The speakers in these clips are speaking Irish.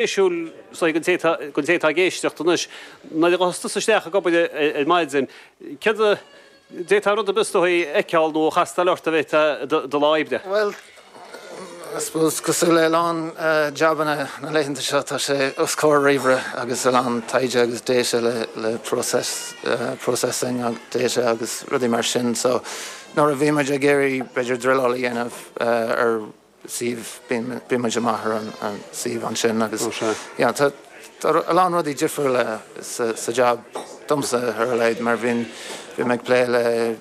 spéisiúil ag an té atá ag éisteacht anois, nuair a thagas tú isteach ag obair ar maidin, céard a d'fhéadfá rud ar bith is dóigh a fheiceáil nó a chastáil ort i do lá oibre? Bhuel, I suppose, cosúil le a lán jabanna na laethanta seo, tá sé os comhair ríomhaire agus a lán taighde agus data le process, processing data agus rudaí mar sin. So nuair a bhí muid ag iarraidh b'fhéidir druileáil a dhéanamh ar. suíomh, bíonn muid amach ar an suíomh ansin agus yeah tá a lán rudaí difriúla sa jab domsa ar a laghad mar bhím ag plé le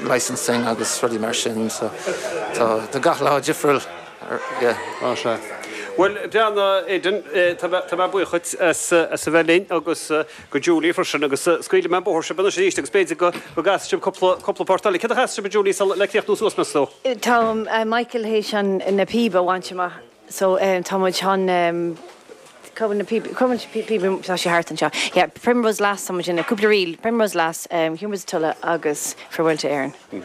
licensing agus rudaí mar sin so tá gach lá difriúil yeah. Bhuel, Breandán, Aidan, tá mé buíoch as a bheith linn agus. go Julie freisin agus scaoilfidh mé an bóthar sibh anois arís agus b'fhéidir go gcasfaidh sibh cúpla, cúpla port eile. Céard a chasfadh sibh a Julie sula, le críochnú suas más ea? Tá Michael chun na píoba a bhaint amach so tá muid chun, cá bhfuil na píobaí, cá bhfuil na píobaí, tá sé thart anseo, yeah, Primrose Lass, tá muid chun, cúpla ríl, Primrose Lass, Humours of Tulla agus Farewell to Éirinn. Hm.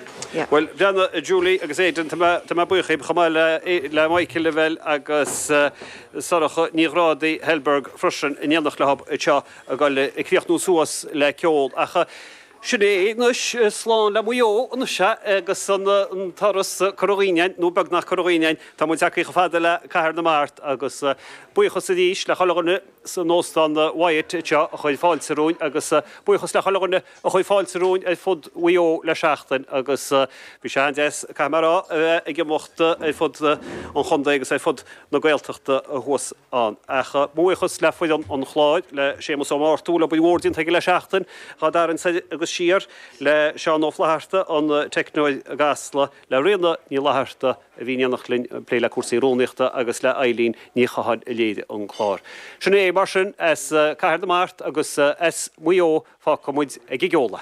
Bhuel, Breanna, Julie agus Aidan, tá mé, tá mé buíoch dhíbh, chomh maith le, le Michael Lavelle agus Sorcha Ní Ghrádaigh, Thalberg, freisin, in éineacht leothub seo ag goil ag críochnú suas le ceol. Ach sin é é anois, slán le Maigh Eo, an sea? agus an turas curtha dhínn, nó beagnach curtha dhínn, tá muid tagtha chomh fada le Cathair na Mart, agus buíochas arís le chuile dhuine san Óstán Wyatt anseo a chuir fáilte romhainn, agus buíochas le chuile dhuine, a chuir fáilte romhainn ar fud Mhaigh Eo le seachtain agus bhí sé an-deas, caithfidh mé a rá, a bheith ag imeacht ar fud an chontae agus ar fud na Gaeltachta thuas ann. Ach mo bhuíochas le foireann an chláir, le Séamus Ó Murchú, le obair mhór déanta aige le seachtain, dhá tharraingt soir agus siar, le Seán Ó Flaithearta, an teicneoir i gCasla, le Ríona Ní Fhlaithearta, a bhí in éineacht linn ag plé le cúrsaí rúnaíochta agus le Eileen Ní Chatháil a léirigh an clár. Sin é, mar sin, as Cathair na Mart agus as Maigh Eo fágfaidh muid ag an gceol.